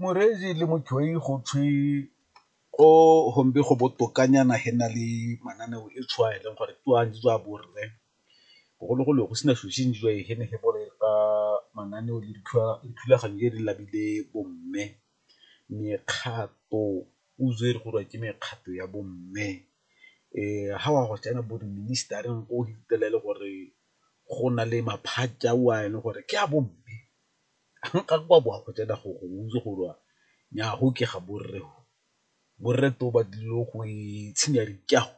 Morezi le motshwai go thwe ko gombe go botokanyana he na le mananeo e tshwaya e leng gore ke a jwa bo rre, bogologolo go sena selo se jwa he ne he boleta mananeo le dithulaganyo tse di labile bo mme. Mekgato puso e re go raya ke mekgato ya bo mme ha wa go tsena bo di minister-reng ko fitlhela e le gore go na le maphata ao a e leng gore ke a bo mme ga go a bo a go tsena gore o itse gore wa nyaa go ke ga borre go, borre twe ba tlile go itshinya dikago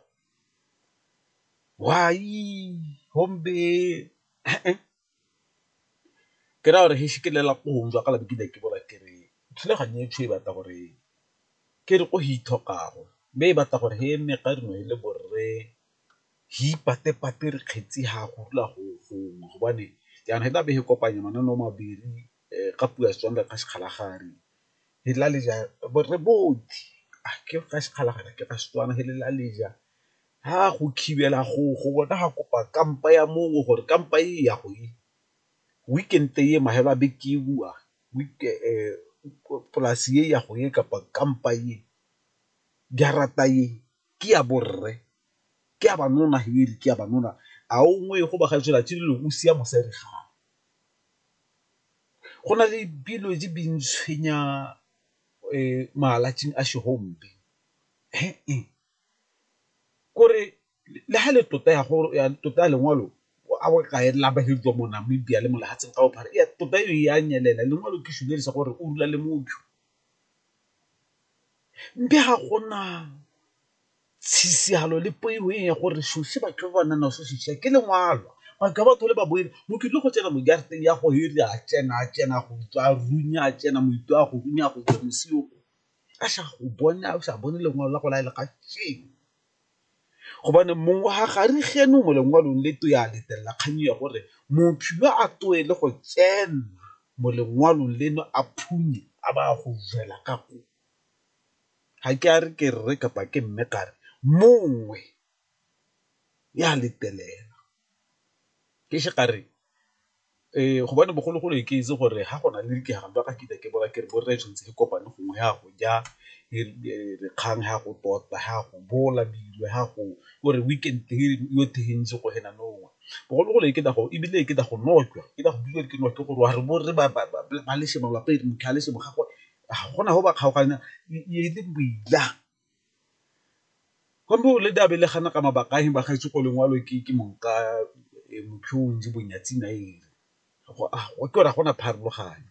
ke raya gore geisha ke lela ko gongwe jwa ka ke ne ke bola ke re thulaganyo e e batla gore ke re ko go ithokago mme e batla gore e nne ka re nne le borre. Hi ipatepate re kgetsi ha go dula go gongwe gobane jaana e tla be e kopanya mananeo mabedi ka puo ya Setswana ka sekgalagadi e la le ja re botlhe a ke ka sekgalagadi ke ka Setswana he le la le ja ha go thibela go go bona ga kopa kampa ya mongwe gore kampa e ya go e weekend e mahala beke e bowa polase e ya go e kapa kampa e jarata e ke ya borre, ke ya banona he e re ke ya banona a o ngwe go ba ga tswela tse dilo o sia mosadi gago. Go na le dilo tse di ntshwenya malatsing a kore le ha le tota ya gore ya tota ya lengwalo a bo kae la ba hediwa mo Namibia le mo lefatsheng ka bophara tota e a nyelela lengwalo ke selo se gore o rula le motho. Mme ga gona tshisihalo le poifo ya gore shushi batho ba ba nang naso shushi ke lengwalo batho ba tlhole ba boela mo ke tlile go tsena mo jarateng ya go ere a tsena a tsena go tswa a runya a tsena moithu a go runya go tswa moswi o a sa go bone a o sa bone lengwalo la go la le kasheno. gobane mong wa ga re geno mo lengwalong le to ya letelela kgang ya gore mophilwa a toe le go tsena mo lengwalong leno a phunye a ba go jela ka ko ga ke a re ke rre kapa ke mme ka re mongwe ya letelela ke se ka re Ee, gobane bogologolo e ke itse gore ga go na le dikgangwa ga ke ise ke bona ke re bo rre tshwanetse re kopane gongwe ya go ja kgang ya go tota ya go bola dilo ya go o re weekend go ena nowa bogologolo e ke go ebile e ke go nwa jwa ke go bua ke nwa ke gore wa re bo rre ba lesego ga gona go ba kgaoganya e le boila. Go ne go le taba e le kana ka mabaka a eng ba gaetsho ko lengwalo ke ke mong ka ke gore ga gona pharologano .